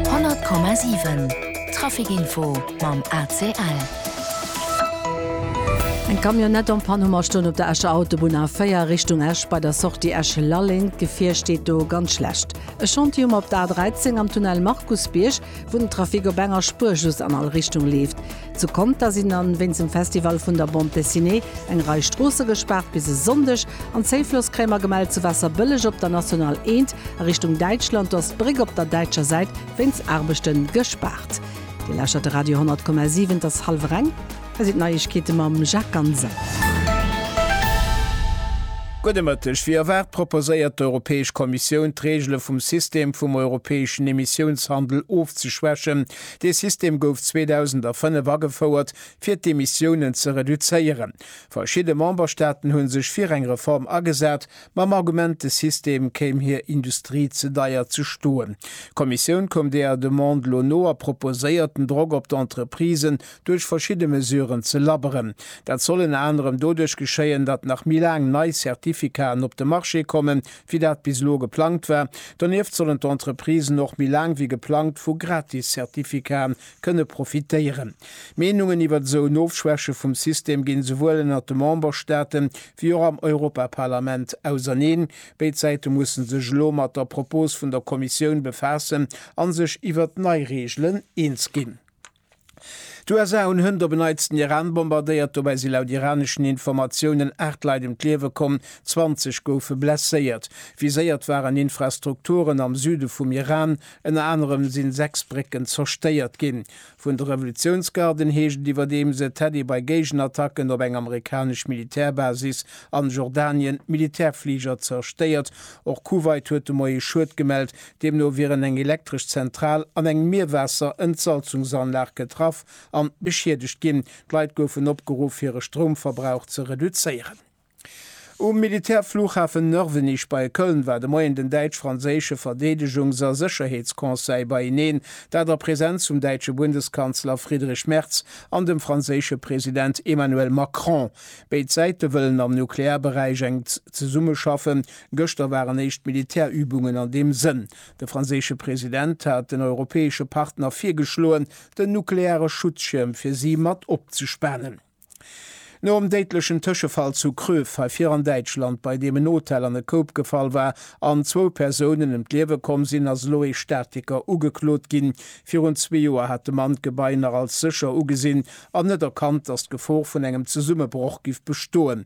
100,7 Trafic Info mam ACL. Eng Camionnette en panne Hummer stoen op der Escher Autobunn A4 Richtung Esch bei der Sortie Esch-Lalleng. D'Gefier steet do ganz schlecht. E Chantier um op der A13 am Tunnel Markusbierg, wou den Trafic op enger Spuer just an all Richtung leeft. Zu Conter sinn an wéinst dem Festival vun der Bande Dessinée eng Rei Stroosse gespaart bis e Sonndeg an Zéiflosskrämer gemellt. Zu Waasserbëlleg op der National 1 a Richtung Däitschland, do ass d'Bréck op der däitscher Säit wéinst Aarbechte gespaart. Dir lauschtert de Radio 10,7, et ass hallwer eng, hei sinn d'Neiegkeete mam Jacques Ganser. Gudde Mëtteg. Wéi erwaart proposéiert d'Europäesch Kommissioun d'Reegele vum System vum europäeschen Emissiounshandel ofzeschwächen, Dee System gouf 2005 agefouert, fir d'Emissiounen ze reduzéieren. Verschidde Memberstaaten hu sech fir eng Reform agesat, mam Argument, de System kéim hir Industrie ze deier ze stoen. D'Kommissioun koum deeër Demande lo no a proposéiert, den Drock op d'Entreprisen duerch verschidde Mesuren ze labberen. Dat soll ënner anerem doduerch geschéien, datt nach méi laang nei Certificaten op de Marché kommen, wéi dat bis elo geplangt war. Donieft sollen d'Entreprisen och méi laang wéi geplangt vu Gratis-Certificaten kënne profitéieren. D'Meenungen iwwert esou en Ofschwäche vum System ginn esouwuel ënnert de Memberstaate wéi och am Europaparlament auserneen. Béid Säite mussen sech elo mat der Propos vun der Kommissioun befaassen a sech iwwert nei Reegelen eens ginn. D'USA hunn hënt op en Neits den Iran bombardéiert. Dobäi si laut iraneschen Informatiounen 8 Leit ëm d'Liewe komm, 20 goufe blesséiert. Viséiert waren Infrastrukturen am Süde vum Iran. Ënner anerem si 6 Brécken zerstéiert ginn. Vun de Revolutiounsgarden heescht et iwwerdeems, et hätt ee bei Géigenattacken op eng amerikanesch Militärbasis an Jordanien Militärfliger zerstéiert. Och Kuwait huet de Moie Schued gemellt, Deemno wieren eng elektresch Zentral an eng Mierwaasser-Entsalzungsanlag getraff an beschiedegt ginn. D'Leit goufen opgeruff, hire Stroumverbrauch ze reduzéieren. Um Militärflughafen Nörvenich bei Köln war de Moien den däitsch-franséische Verdeedegungs a Sécherheetsconseil beieneen, dat a Präsenz vum däitsche Bundeskanzler Friedrich Merz an dem franséische President Emmanuel Macron. Béid Säite wëllen am Nuklearberäich enk zesummeschaffen, Gëschter waren éischt Militärübungen an deem Sënn. De franséische President hat den europäesche Partner virgeschloen, den nukleare Schutzschierm fir si mat opzespanen. Nom déidlechen Tëschefall zu Kröv, hei vir an Däitschland, bei deem en Hotel an e Koup gefall war an zwou Persounen ëm d'Liewe komm sinn, ass elo ee Statiker ugeklot ginn. Virun zwee Joer hat de Mann d'Gebai nach als sécher ugesinn an net erkannt, datt d'Gefor vun engem Zesummebroch giff bestoen.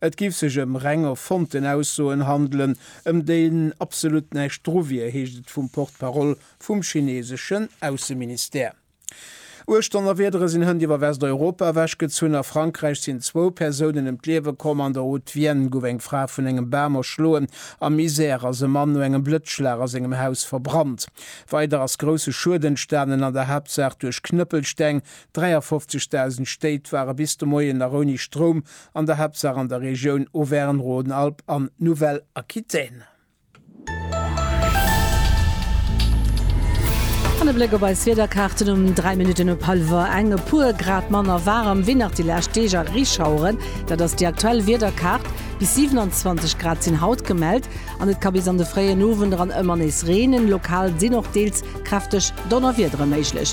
Et géif sech ëm reng erfonnten Aussoen handelen, ëm déi absolut näischt dru wier, heescht et vum Porte-parole vum chineseschen Ausseministère. Uecht Donnerwiedere sinn hënt iwwer Westeuropa ewechgezunn. A Frankräich sinn zwou Persounen ëm d'Liewe komm. An der Haute-Vienne gouf eng Fra vun engem Bam erschloen. Am Isère ass e Mann no engem Blëtzschlag a sengem Haus verbrannt. Weider ass grousse Schued entstanen, an der Haaptsaach duerch Knëppelsteng. 53.000 Stéit ware bis de Moien nach ouni Stroum, An der Haaptsaach an der Regioun Auvergne-Rhône-Alpes an Nouvelle-Aquitaine. An e Bléck op eis Wiederkaarten um 3 Minutten op hallwer eng. E puer Grad manner waarem wéi nach déi lescht Deeg a Reeschaueren. Dat ass déi aktuell Wiederkaart. Bis 27 Grad sinn haut gemellt an et ka bis an de fréien Owend eran ëmmer nees reenen. Lokal sinn och deels kräfteg Donnerwiedere méiglech.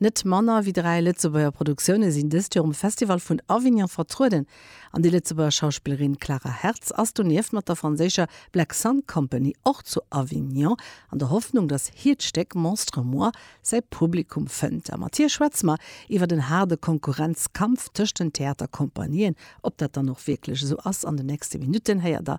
Net manner wéi dräi Lëtzebuerger Produktioune sinn dëst Joer um Festival vun Avignon vertrueden an déi Lëtzebuerger Schauspillerin Clara Hertz ass donieft mat der franséischer Black Sun Company och zu Avignon an der Hoffnung, datt hiert Stéck Monstre Moi säi Publikum fënnt. A mat hir schwätze mer iwwert en haarde Konkurrenzkampf tëscht den Theatercompagnien. Ob dat dann och wierklech esou ass? An den nächste Minutten héiert der